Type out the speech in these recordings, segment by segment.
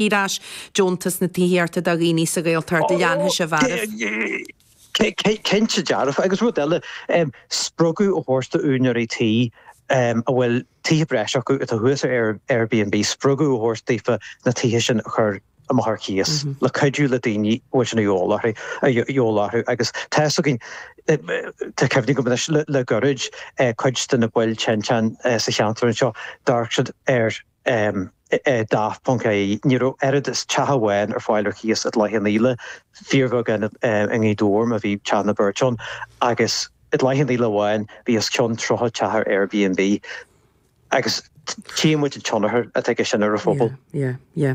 Ar ais. Deontas na dtithíochta do dhaoine sa Ghaeltacht, a dhéanfadh siad. Cinnte dearfa. Agus rud eile, spreagadh a thabhairt do úinéirí tí a bhfuil tithe breise acu atá thuas ar Airbnb, spreagadh a thabhairt daofa na tithe sin a chur amach ar cíos le cuidiú le daoine a bhfuil sin a fhios orthu, a fhios orthu. Agus tá fhios againn, tá cuimhne agam anois le gairid, cuid de na baill tinteán sa cheantar anseo, d'amharc siad ar. daft.ie Ní raibh oiread is teach amháin ar fáil ar chíos i gCloich Cheann Fhaola, fíorbheagán i nGaoth Dobhair má bhí teach nó beirt ann, agus i gCloich Cheann Fhaola amháin bhí os cionn 30 teach ar Airbnb. Agus tchím muid an tionchar atá aige sin ar an phobal. Yeah, yeah, yeah.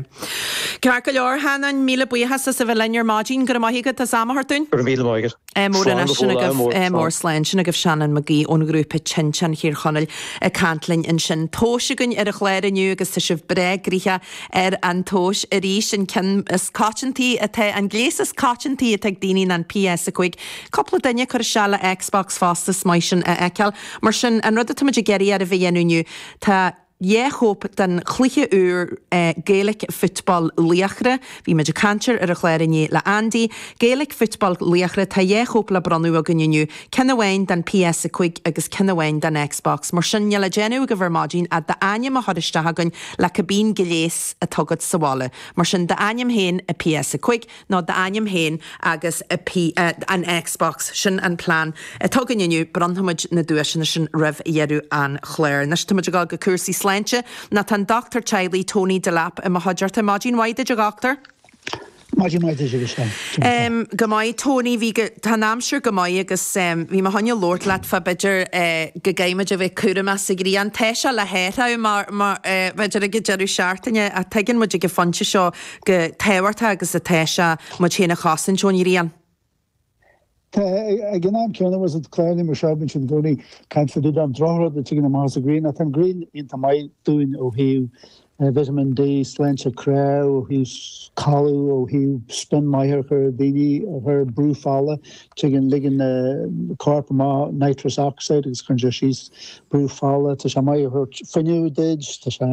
Ceart go leor, a Sheanáin. Míle buíochas as a bheith linn ar maidin. Go raibh maith agat as am a thabhairt dúinn. Go raibh míle maith agat. Ádh mór anois, ádh mór, slán. Sin agaibh Seanán Mac Aoidh ón ngrúpa Tinteán Thír Chonaill ag caint linn ansin. Tomhas againn ar an gclár inniu agus tá sibh breá eagraithe ar an tomhas arís, an ceann is coitiantaí atá, an gléas is coitiantaí atá ag daoine ná an PS5. Cúpla duine ag cur isteach le Xbox fosta, is maith sin a fheiceáil. Mar sin, an rud atáimid ag iarraidh oraibh a dhéanamh inniu, tá, Dhá chóip den chluiche úr Gaelic Football Laochra. Bhí muid ag caint air ar an chlár inné le Andy. Gaelic Football Laochra, tá dhá chóip le bronnadh againn inniu, ceann amháin don PS5 agus ceann amháin don Xbox. Mar sin níl le déanamh agaibh ar maidin ach d'ainm a chur isteach againn le cibé gléas atá agat sa bhaile. Mar sin, d'ainm féin agus PS5. nó d'ainm féin agus P an Xbox. Sin an plean atá againn inniu, bronnfaimid na duaiseanna sin roimh dheireadh an chláir. Anois táimid ag dul go cúrsaí sláinte, nó tá an dochtúir teaghlaigh Tony Delap i mo chuideachta. Maidin mhaith duit, a Dhochtúir. Maidin mhaith duit agus Go maith Tony, bhí go, tá an aimsir go maith agus bhí mé féin ag labhairt leat fá b'fhéidir go gcaithfimid a bheith cúramach sa ghrian, tá sé le hathrú mar, mar, b'fhéidir ag an deireadh seachtaine ach tuigeann muid ag an phointe seo chomh tábhachtach agus atá sé muid féin a chosaint ón ghrian. Tá, ag an am céanna agus an clár aniar seo againn sin i gcónaí, caithfimid dul an droch rud a thigeann amach as an ghrian, ach tá an ghrian iontach maith dúinn ó thaobh vitamin D, sláinte cnámh, ó thaobh codladh, ó thaobh spion maith a chur ar daoine, a chur ar brú fola, tigeann, ligeann an corp amach nitrous oxide agus cuireann sé síos brú fola, tá sé maith ag tabhairt fuinneamh duit, tá sé,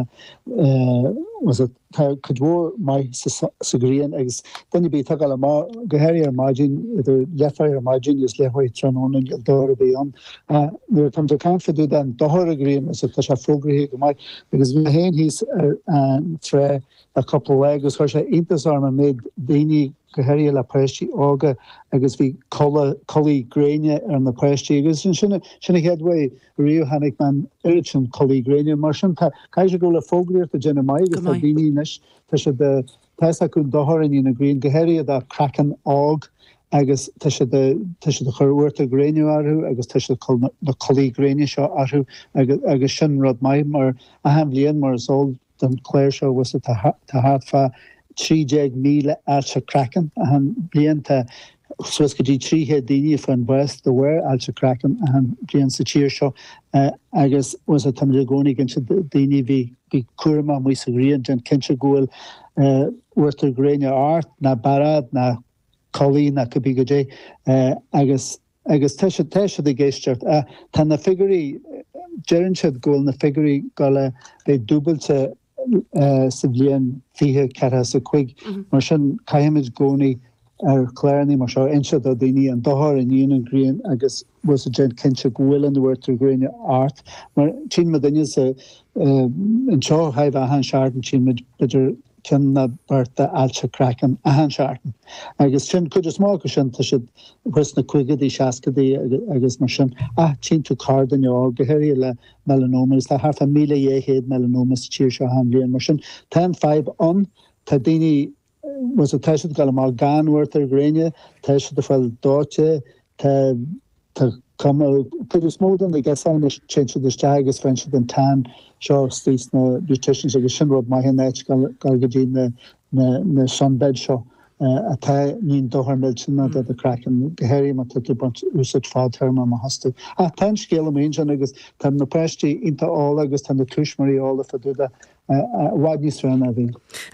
eh, was it, Tá cuid mhór maith sa ghrian agus duine ar bith atá ag gabháil amach, go háirithe ar maidin, idir leathuair ar maidin agus leathuair tráthnóna, níl dochar ar bith ann. Nuair atá muid ag caint fá dtaobh den dochar ón ghrian is atá sé fógraithe go maith agus bhí mé féin thíos ar an trá le cúpla lá agus chuir sé iontas orm an méid daoine, go háirithe le páistí óga agus bhí culaith, culaith gréine ar na páistí agus sin, sin an chéad rud. Riamh chonaic mé an oiread sin culaith gréine. Mar sin tá, caithfidh sé go bhfuil an fhógraíocht ag déanamh maith agus tá daoine anois, tá siad, tá fhios acu an dochar a ndéanann an ghrian, go háirithe do chraiceann óg agus tá siad, tá siad ag cur uachtar gréine orthu agus tá siad ag cur na culaith gréine seo orthu agus, agus sin rud maith mar achan bhliain mar is eol don chlár seo agus tá thart fá 13,000 ailse craicinn achan bliain. Tá suas go dtí 300 daoine a fhaigheann bás de bharr ailse craicinn achan bliain sa tír seo agus tá muid i gcónaí ag inse do daoine a bheith cúramach amuigh sa ghrian, déan cinnte go bhfuil uachtar gréine ort, ná bearád ná culaith ná cibé goidé agus. Agus tá siad, tá siad ag éisteacht. Tá na figiúirí, deireann siad go bhfuil na figiúirí ag gabháil a bheith dúbailte sa bhliain fiche ceathracha is a cúig. Mar sin caithfimid i gcónaí ar chlárannaí mar seo a inse do daoine an dochar a níonn an ghrian agus bhfuil a fhios agat déan cinnte go bhfuil an t-uachtar gréine ort. Mar tchíonn muid duine sa, anseo chóir a bheith achan seachtain tchíonn muid b'fhéidir cionn nó beirt ailse craicinn achan seachtain agus sin cuid is mó acu sin tá siad thuas sna caogaidí, seascaidí agus mar sin ach tchíonn tú corrdhuine óg, go háirithe le melanoma agus tá thart fá míle dhá chéad melanoma sa tír seo achan bhliain mar sin tá an fhadhb ann, tá daoine, tá siad ag dul amach gan uachtar gréine, tá siad ag fáil dóite, tá. Tá cuma ar chuid is mó de na girseachaí anois, téann siad isteach agus faigheann siad an tan seo istigh sna beauticians agus sin rud maith in áit a ghabháil go dtí na sunbeds seo atá níonn dochar millteanach do do chraiceann, go háirithe má tá tú ag baint úsáid fadtéarmach astu. Ach tá an scéal amuigh ansin agus tá na páistí iontach eolach agus tá na tuismitheoirí eolach fadúda i bhfad níos fearr ná bhí.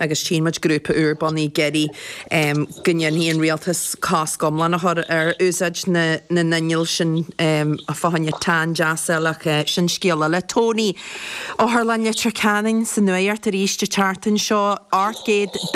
Agus tchíonn muid grúpa úr bunaithe, ag iarraidh, go ndéanfadh an rialtas cosc iomlán a chur ar úsáid na n-inneall sin fá choinne tan deas a fháil ach sin scéal eile. Tony, otharlann Leitir Ceanainn sa nuacht arís an tseachtain seo. Airgead.